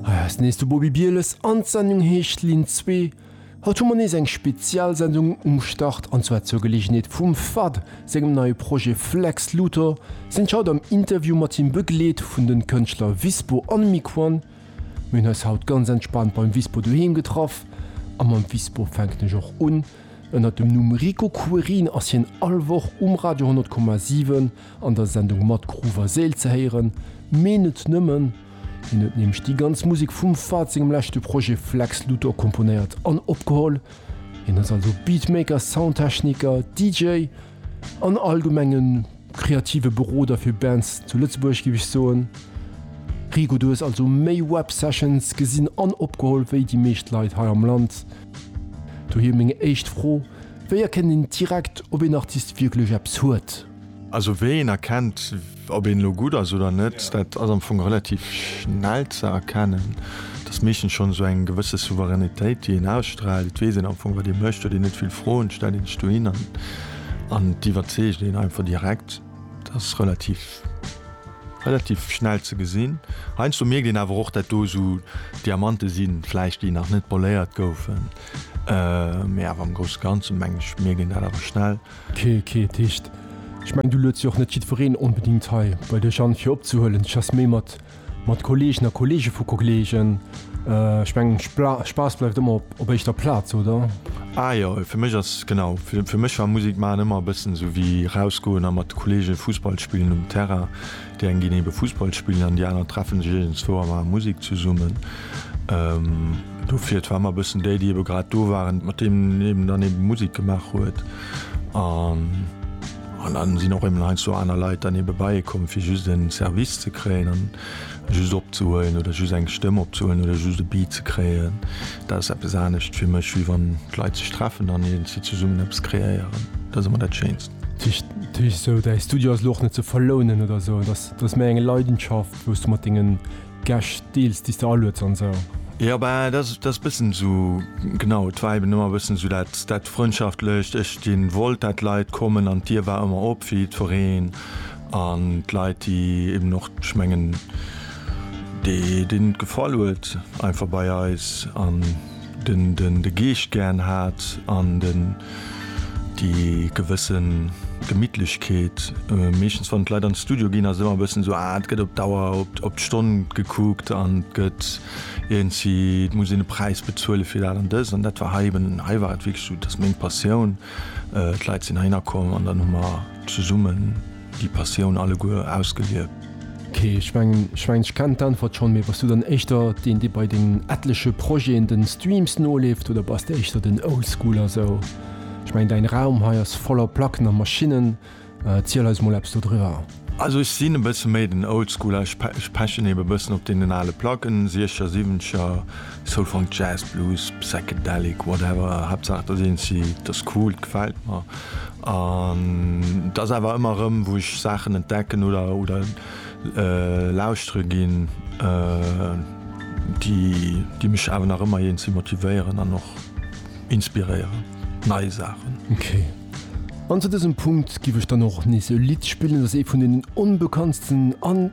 Hei eis nees de Bobi Bieles an d'Sendung heescht Linn 2. Haut hu mer nees eng Spezialsendung um Start an zwar zur Geleegenheet vum fad sengem neie Projet Flex Luthor sinn ech haut am Interview mat him begleet vun den Kënschtler Wispo an Miquon. Mir hunn eis haut ganz entspaant beim Wispo doheem getraff a mam Wispo fänken ech och un. Ënnert dem Numm Rico Querin ass hien all Woch um Radio 100,7. An der Sendung Matt Gruver Seel ze héieren, mee net nëmmen. Hien huet nämlech déi ganz Musek vum Fahd sengem leschte Projet Flex Luthor komponéiert an opgeholl. Hien ass also Beatmaker, Soundtechniker, DJ an allgemeng e kreative Beroder fir Bands zu Lëtzebuerg, géif ech soen. Rigo, du hues also méi Websessions gesinn an opgeholl wéi déi meescht Leit hei am Land. Dohier meng éischt Fro, Wéi erkennt een direkt, ob een Artist wierklech eppes huet? Also wéi een erkennt, ob een elo gutt ass oder net, dat ass am Fong relativ schnell ze erkennen. Et ass meeschtens schonn esou eng gewësse Souveränitéit, déi een ausstraalt. Et weess een am Fong, wat ee mécht, huet een net vill Froen, stellt een sech dohin an, an et iwwerzeegt een einfach direkt. Et ass relativ, relativ schnell ze gesinn. Heiansdo mierkt een awer och, dat do esou Diamante sinn, vläicht déi nach net poléiert goufen, mä awer am Grousse Ganze, mengen ech, mierkt een dat awer schnell. Kee, kee Ticht. Ech mengen, du lueds jo och net jiddwereen onbedingt hei bei dech an, fir opzehuelen. Ech ass méi mat, mat Kolleegen a Kolleege vu Kollegen. Ech mengen, Spaass bleift ëmmer op éischter Plaz, oder? Ah jo, fir mech ass, genau, fir mech war Musek maachen ëmmer e bëssen esou wéi rausgoen a mat Kolleege Fussball spillen um Terrain. Déi eng ginn ebe Fussball spillen an déi aner treffe sech iergendzwou a maache Musek zesummen. Do fir, et war ëmmer e bëssen déi, déi ebe grad do waren, mat deem een dann ebe Musek gemaach huet. An dann sinn och ebe heiansdo aner Leit dann ebe bei ee komm, fir just en Service ze kréien an just opzehuelen oder just eng Stëmm opzehuelen oder just e Beat ze kréien. Dat ass eppes anescht fir mech, wéi wann d'Leit sech treffen an iergendwéi zesummen eppes kreéieren. Dat ass ëmmer dat Schéinst. Tisch so däi Studio ass louch net ze verlounen oder so dass mé eng Leidenschaft wos du mat dingen Gesch deels dies der aluets an sou. Jo bah das das bëssen su genau et war eben ëmmer bëssen su dat dat Frëndschaftlecht ech di wollt dat d'Leit kommen an d'Dier war ëmmer op fir jiddwereen an d'Leit déi eben och ech mengen déi deenen et gefall huet einfach bei eis an. Den den de Geescht gären hat an den déi gewësse Gemittlechkeet. Meeschtens wann d'Leit an d'Studio ginn ass ëmmer e bëssen esou, ah et gëtt op d'Auer, op d', op d'Stonn gekuckt an et gëtt iergendwéi, et muss een e Präis bezuele fir dat an dëst. An dat war hei eben, hei war et wierklech esou, et ass meng Passioun, d'Leit sinn heihinner komm an dann hu mer zesummen. Déi Passioun alleguer ausgelieft. Ok, ech mengen ech kennen d'Äntwert schon, mee bass du dann éischter deen dee bei dengen etleche Projeten den Streams noleeft oder bass de éischter den Oldschooler sou? Ech mengen däin Raum hei ass voller Placken a Maschinnen, erziel eis mol eppes dodriwwer. Also ech sinn e bësse méi den Oldschooler, ech pechen eben e bëssen op deenen ale Placken, Siecher, Siwwencher, Soul, Funk, Jazz, Blues, Psychedelic, whatever, Haaptsaach dat eent seet, dat ass cool, dat gefält mer. An dat ass awer ëmmer erëm, wou ech Saachen entdecken oder lauschtere ginn, déi mech awer nach ëmmer jeenzees motivéieren an och inspiréieren, nei Saachen. Ok. An zu dësem Punkt giff ech dann och nees e Lidd spillen. Dat ass ee vun deenen onbekanntsten an.